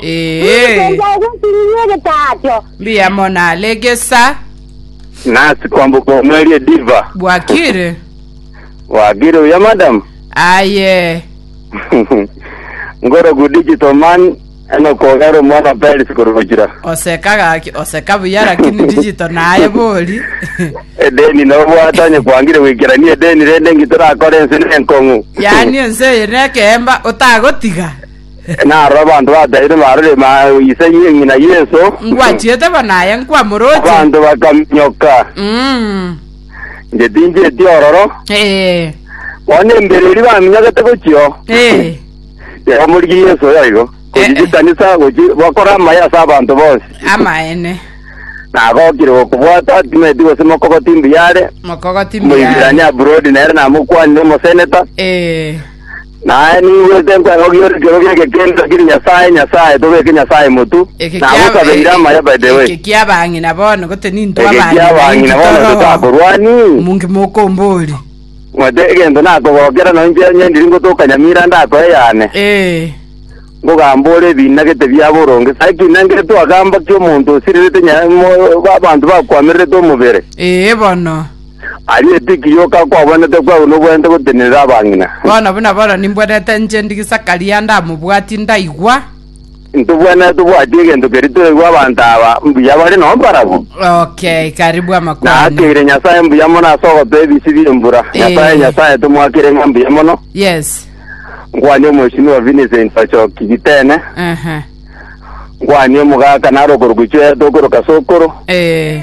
Ee, Ninsense agwesiririe egetaacho. mbuya mono are egesa Nasi kwamboka omweri ediva. bwakire. Wagire uya madam. Aye, Ngorogu digital man eno kogera omwana wa Paris korogokira. oseka gaki, oseka buya lakini digital naye bori. Edeni no bwata onye kwangire gwikerania edeni rende ngi torakore ense ne enkong'u. yaani ense eye nekemba otagotiga. Narora abanto bataire barore ise ye ng'ina Yeso. Ngwachiete bo naye nkwamoroche. Abanto bakaminyoka. Mm. Inche tinchieti ororo. Eh. Bono embere eri baminyokete gochio. Eh. Yaba morigi Yeso yoigo. Gochi Eh, eh. chikanisa gochi bakora amaye ase abanto bonsi. Amaene. Nagokire gokobwata timeti gose mokogoti mbuyare. Mokogoti mbuyare. Moibirania Burodi nere namokwanire omoseneta. Eh. Naye ningwete nkweng'okia ore ekioro gi'egekindu, kiri Nyasae, Nyasae, tobeke Nyasae motu, Eke na kia- agosabeire e- e- amaya, by the way. Eke kia bang'ina bono gote ninto Eke abang'ina kia bang'ina inki bono toroho. totakorwani. Munki mokombori. Ng'wete egento nakogokera, na inche onye ndiri ngotoka nyamira ndakoe yane, Eh. ngogamba ore ebiina gete bia boronge. Sae ki nangire twagamba ki omonto osirerete nya- mo- ba- abanto bakwamererete omobere? Eh bono. Aria etiki yoka kwabonete kwarwe noboyante gotenerera abang'ina. Bono buna bono nimbwenete inche ndi Gisakaria ndamobwati ndaigwa. Ntobwenete tobwati egento keria toigwe abanto aba mbuya bare noo mbarabu. Okay, karibu amakwana. Naakeire Nyasaye mbuya mono ase ogotoa ebisi bi'embura. Eh. Nyasaye Nyasaye tomwakire ng'a mbuya mono. Yes. Nkwanie Omweshimiwa Vincent Ochoki Gitene. Aha. Nkwanie omogaka naro okoruku chweya tokoroka sokoro. Eh.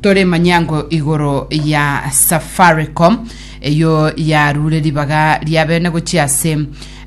Tore manyango igoro ya Safaricom eyo yarure ribaga ria bene gochia ase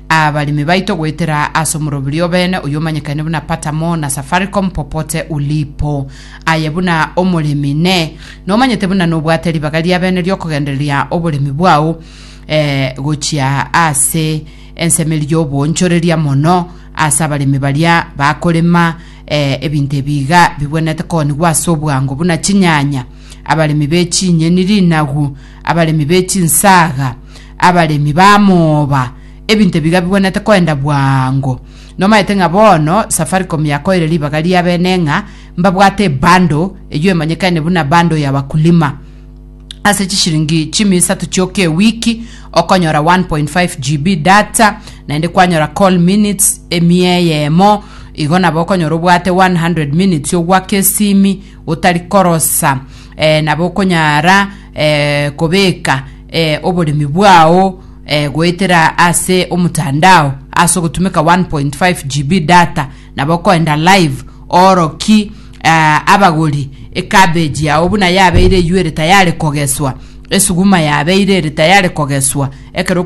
abarimi baito goetera ase omorobiri obene oyo omanyekane buna Patamo na Safaricom Popote Ulipo. Aye buna omoremi ne nomanyete buna nobwate ribaga ria bene riokogendereria oboremi bwao eh, gochia ase ensemeria y'oboonchoreria mono ase abaremi baria bakorema Ee, ebinto ebi iga bigwenerete koonigwa ase obwango buna chinyanya, abaremi be chinyeni, rinagu, abaremi be chinsaga, abaremi b'amooba, ebinto ebi iga bigwenerete koenda bwango. Nomaete ng'a bono Safaricom yakoeire ribaga ri'abene ng'a mbabwate ebundle eyio emanyekane buna bundle ya wakulima, Ase chishiringi chimi isato chioka ewiki okonyora 1.5 GB data naende kwanyora call minutes emi eyemo igo nabo okonyora obwate 100 minutes ogwaka esimi otari korosa eh, nabo okonyara eh, kobeka eh, oboremi bwao eh, goetera ase omotandao ase ogotumeka 1.5 GB data Nabo koenda live ooroki eh, abagori ecabbage yao buna yabeire eywo ere tayari kogeswa, esuguma yabeire ere tayari kogeswa ekero